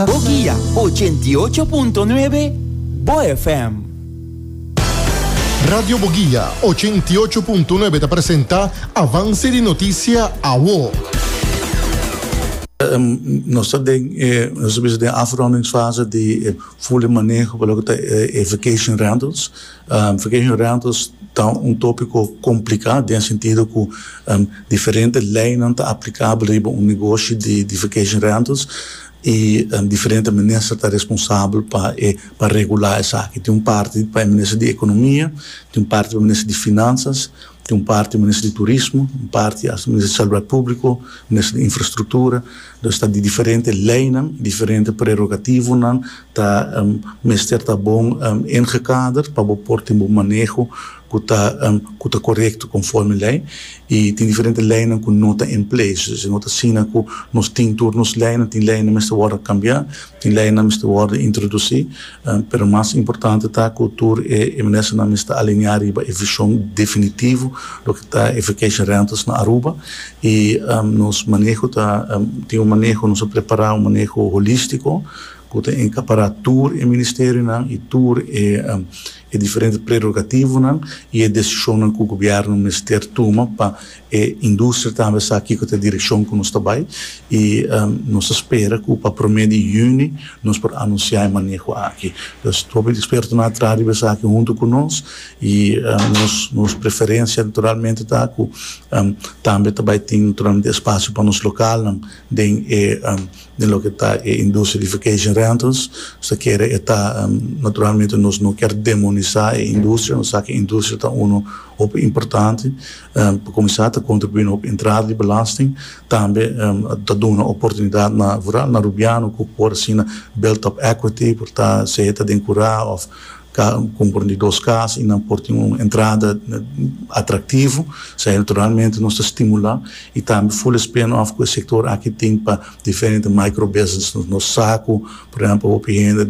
Boguia, ochenta i ocho punto nuebe, bo FM. Radio Boguia, ochenta i ocho punto nuebe ta presenta Avance di Noticia Awo. Nos ta den e, nos a bisa den afrondingsfase di e full e maneho pa loke ta e vacation rentals. Vacation rentals ta un tópiko kompliká den sentido ku diferente leinan ta aplikabel riba un negoshi di vacation rentals i diferente minister ta responsabel pa e pa regulá esaki. Tin un parti pa e minister di ekonomia, tin un parti pa e minister di finansas, tin un parti pa e minister di turismo, un parti hasta minister di salubridad públiko, minister di infrastruktura. Entonces ta di diferente leinan, diferente prerogativonan Ta mester ta bon ingekader pa bo por tin bo maneho ku ta ku ta korekto konforme lei. I tin diferente leinan ku no ta en place. Esei no ta asina ku nos tin tur nos leinan. Tin leinan mester wòrdu kambiá, tin leinan mester wòrdu introdusí, pero mas importante ta ku tur e e ministernan mester alineá riba e vishon definitivo loke ta e vacation rentals na Aruba. I nos maneho ta tin un maneho nos a prepará un maneho holístiko. ku ta enkapará tur e ministerionan i tur e diferente prerogativonan i e desishonnan ku gobièrnu mester tuma pa e industria tambe sa kiko ta e direkshon ku nos ta bai i nos ta spera ku pa promé di yüni nos por anunsiá e maneho aki. Dus hopi di ekspertonan a traha riba esaki huntu ku nos i nos nos preferensia naturalmente ta ku tambe ta bai tin naturalmente espasio pa nos lokalnan den e Den loke ta e industria di vacation rentals, nos ta kere e ta, naturalmente nos no kier demonisá e industria, nos sa ku e industria ta unu hopi importante, pa kuminsá ta kontribuí na hopi entrada di belasting, tambe ta duna oportunidat na vooral na rubiano ku por asina build up equity, por ta, sea ta den kurá òf ka konporme di dos kas i nan por tin un entrada atraktivo, sa naturalmente nos ta stimulá i tambe full spin off ku e sektor aki tin pa diferente micro business, nos sa ku por ehèmpel hopi hende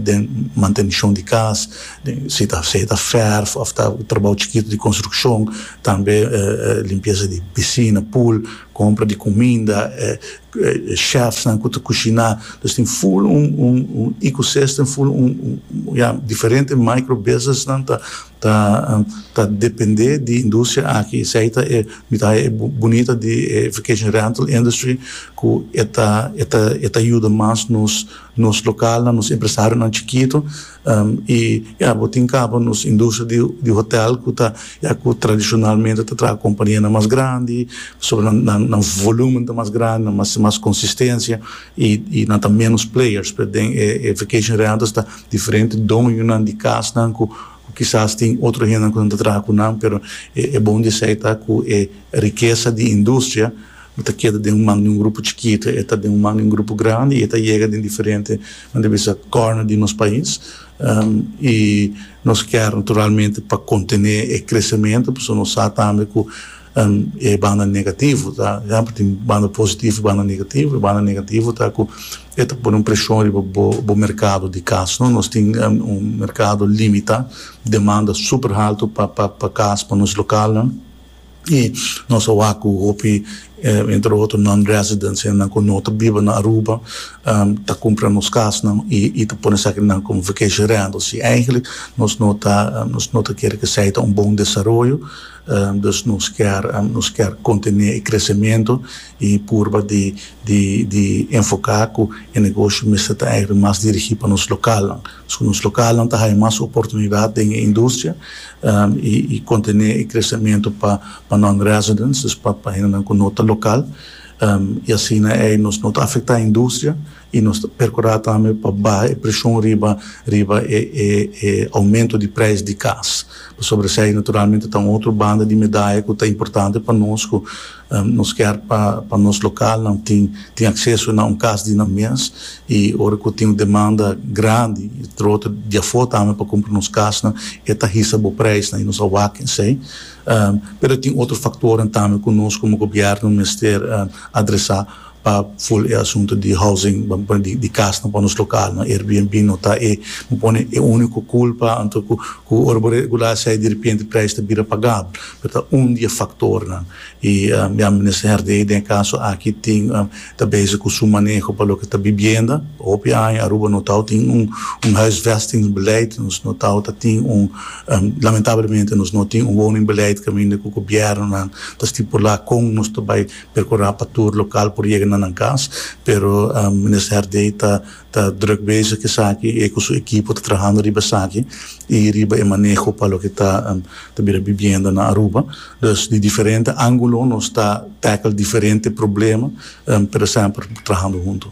den mantenishon di kas, si ta si ta fèrf òf ta trabou chikitu di konstrukshon, tambe limpiesa di pisina, pool, kompra di kuminda, chefnan ku ta kushiná los tin full un un un ecosystem full un un ya diferente micro businessnan ta ta ta dependé di industria aki esei ta e mi ta haña e bunita di e vacation rental industry ku e ta e ta e ta yuda mas nos Nos lokalnan, nos empresarionan chikitu i e abotin kaba nos industria di hotel ku ta ya ku tradishonalmente ta traha kompanianan mas grandi pasobra nan nan volúmen ta mas grandi, nan mas mas konsistensia i nan ta ménos players. P'e den e vacation rentals ta diferente doñonan di kasnan ku kisas tin otro hendenan ku nan ta traha ku nan pero e bon di esei ta ku e rikesa di industria, Bo ta keda den un man di un grupo chikitu, e ta den un man di un grupo grandi, e ta yega den diferente, nan ta bisa, kòrner di nos pais. I nos kèr naturalmente pa kontené e kresementu, pasobra nos sa tambe ku e banda negativo ta, siempre tin banda positivo i banda negativo. E banda negativo ta ku e ta pone un preshon riba bo, bo merkado di kas, no? Nos tin un merkado limitá, demanda super haltu pa, pa, pa kas, pa nos lokalnan. I nos a wak ku hopi, entre otro, non-residents, hende ku no ta biba na Aruba, ta kumpra nos kasnan i ta pone esaki nan komo vacation rental. Si eigentlik nos no ta nos no ta kere ku esei ta un bon desaroyo. Dus nos kier nos kier kontiné e kresementu i purba di di di enfoká ku e negoshi mester ta eigentlik mas dirigí pa nos lokalnan. Pasobra nos lokalnan ta haya mas oportunidat den e industria. y contene e crecemento pa pa non residents, dus pa pa hendenan cu no ta local, y asina ey nos no ta afecta industria y nos ta percura tambe pa baha e presion riba riba e e e aumento di prijs di cas, pasobra esey naturalmente ta un otro banda di medaya cu ta importante pa nos cu Nos kier pa pa nos localnan tin tin acceso na un cas di nan mes y ora cu tin un demanda grandi y trote di afo tambe pa cumpra nos casnan e ta hisa bo prijsnan y nos a wak esey. Pero tin otro factornan tambe cu nos como gobierno mester adresa. pa full e asunto di housing bo pone di cas nan pa nos local nan Airbnb no ta e bo pone e unico culpa anto cu cu ora bo regula asai diripiente prijs ta bira pagabel pero ta un di e factor nan y ya minister Herdey den e caso aki tin ta bezig cu su maneho pa loke ta bibienda hopi aña Aruba no tao tin un un huisvesting beleid nos no tao ta tin un lamentablemente nos no tin un woning beleid caminda cu gobierno nan ta stipula con nos ta bay Percurá pa tur local por yega na nan cas, pero Minister Herdey ta ta druk bezig esaki, e cu su equipo ta trahando riba esaki y riba e maneho pa loke ta ta bira bibienda na Aruba. Dus di diferente angulo nos ta tackle diferente problema, pero semper trahando hunto.